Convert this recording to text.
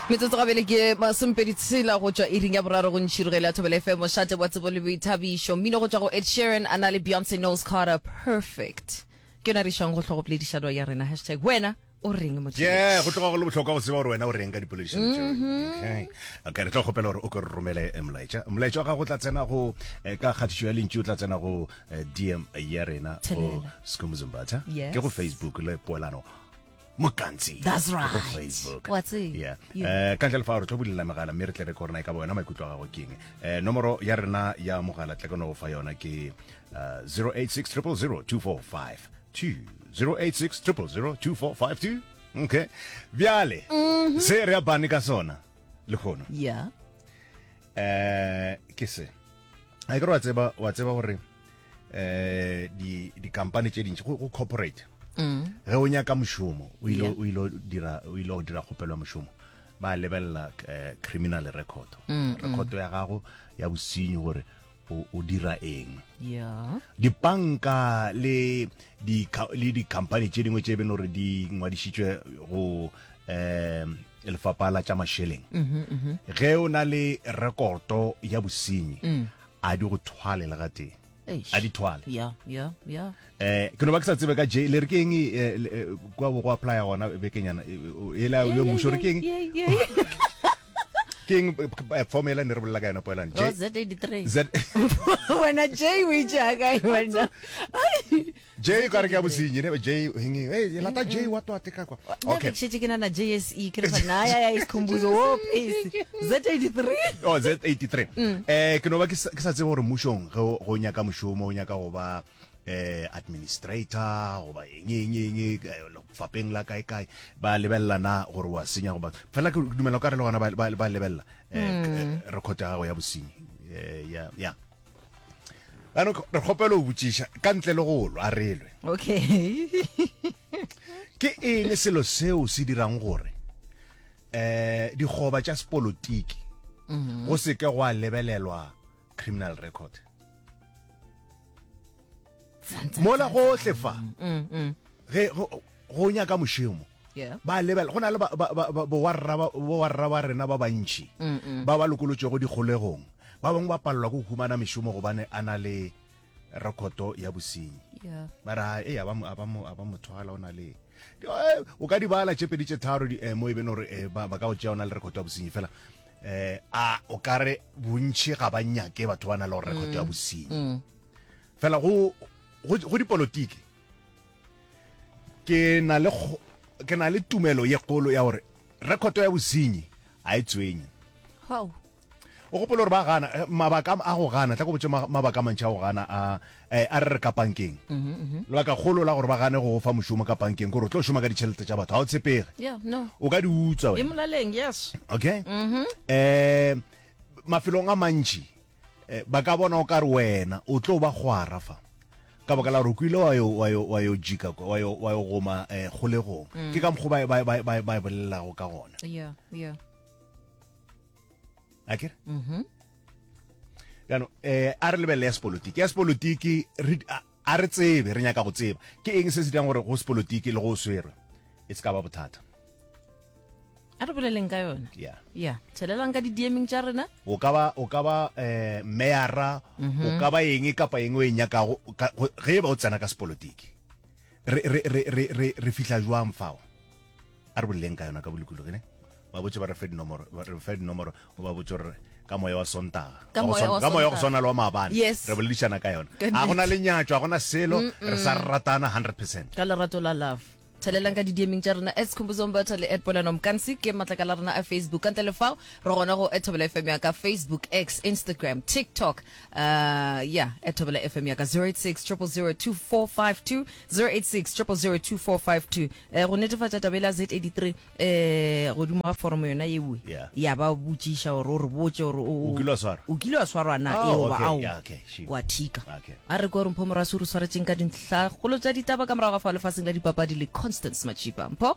metsotso gabele ke masomepedi tshela go tšwa iring ya boraro go ntšhirogelo ya thobela fm mošate wa tsebo le boithabišo mmino go tšwa go ed sheeran a na le beyonce nose carter perfect ke yona re išang go hlogopoledišano ya rena hashtag wena o reng yeah go tloga go le botlhokwa go tseba gore wena o reng ka dipoledišano tšeo mm-hmm. okay re tlo kgopela gore o ke re romele eh, molaetša molaetša wa gago o tla tsena go eh, ka kgatišo ya lentši o tla tsena go eh, dm ya rena go skomuzumbatha ke go facebook le poelano mokantsi that's right facebook what's it yeah eh ka ntle fa re tlo bulela megala mme re tle re korona e ka bona maikutlo ga go keng eh nomoro ya rena ya mogala tle kono go fa yona ke 0860002459 2 okay bjale mhm. se re abane ka sona le kgono ya eh ke se a ke re wa tseba wa tseba gore eh di di company tše dintši go corporate mm. ge o nyaka mošomo o ile o ile dira o ile o dira kgopelo ya mošomo ba lebelela eh, criminal record mm, mm. record ya gago ya bosinyi gore o, o dira eng yeah. dipanka le di le dikhamphani tše dingwe tše beno gore di ngwadišitšwe go um lefapha la tša mašeleng mhm, mhm. ge o na le rekoto ya bosenyi mm. a di go thwale le ga tee a di thwale yeah, yeah, yeah. eh ke no ba ke sa tsebe ka je le re ke eng eh, eh, kwa bo go apply gona bekenyana e eh, la yo musho re ke eng ke eng formula ne re bolela ka yona poelang je z83 z wena j o itse ga kae wena j o ka re ke ya bosinyi ne j eng e lata j wa to ateka kwa okay ke ke na na jse ke re fa na ya ya ikhumbuzo wo pese z83 oh z83 mm. eh ke no ba ke sa tsebe gore mushong go nyaka mushomo o nyaka go ba eh administrator goba eng eng eng eh, fapeng la kae kae ba lebella na gore wa senya goba fela ke dumela ka re le gona ba ba lebella eh, hmm. eh record ya gago ya bosenyi eh ya ya ano re kgopelo o botšiša ka ntle le go lwa relwe okay ke eng selo seo se dirang gore eh digoba tša sepolotiki hmm. go se ke go a lebelelwa criminal record mola gohle fa mm, mm. ge go nyaka mošemo ba lebela go na le bowarra ba rena ba bantšhi ba ba lokolotšego dikgolegong ba bangwe ba palelwa ke go humana mešomo gobane a na le rekoto ya bosenyi ba re e a ba mo thwala o na le eh, o ka di bala tše pedi tše tharo eh, mo e beno gore eh, ba ka go tšea o na le rekoto ya bosenyi fela eh a o ka re bontšhi ga ba nyake batho ba na le gore rekoto ya mm. bosenyi mm. fela go go dipolotiki ke na le ke na le tumelo ye kgolo ya gore rekoto ya bosenyi a e tswenye O gopola gore ba gana eh, mabaka a go gana tla go botse mabaka a mantši a go gana a eh, a re re ka pankeng mhm, mhm. lebaka kgolo la gore ba gane go fa mošomo ka pankeng kore o tlo šoma ka ditšhelete tša batho ga o tshepege o ka di utsa okay um mafelong a mantši eh, ba ka bona o ka re wena o tlo ba gwara fa ka baka la gore o kwile wa yo jika wa yo goma kgolegong mm. ke ka mokgo ba e bolelago ka gona a kere mm-hmm. jaanong um a re lebelele ya sepolotiki ya sepolotiki a re tsebe re nyaka go tseba ke eng se se dirang gore go sepolotiki le go swerwe e se ka ba bothata a re boleleng ka yona ya ya tshelelang ka di-dming tša rena o ka ba o ka ba um meyara o mm-hmm. ka ba eng kapa eng o e nyakago ge e ba o tsena ka sepolotiki re fihla jwang fao a re boleleng ka yona ka bolokologi ne ba botse ba re fe dinomoro ba re fe dinomoro o ba botse gore ka moya wa sontaga Ka Wa go moya swan- wa ka moya wa go Sontaga. swana le wa maabane Yes. re boledišana ka yona Ka ga go na le nyatso ga gona selo re sa ratana 100 percent ka lerato la love thelelang ka didiemeng tša rena as khombozong batho le at polano mokansi ke matlaka la rena a facebook ka ntle le fao re gona go ethabela fm ya ka facebook x instagram tiktok uh, ya ethabela fm ya ka 086 0002452 086 go netefatša taba e la Z83 um godimo ga foromo yona ewe Yeah. ya ba botšiša gore o re botse gore o- O kile wa swarwa? o kile wa swarwa na Oh, eoba okay, ao yeah, okay, sure. wa thika Okay. a re ko re mpho morase o re tshwaretseng ka dintlhagolo tša ditaba ka morago ga fa lefaseng la dipapadi le constance machipa mpho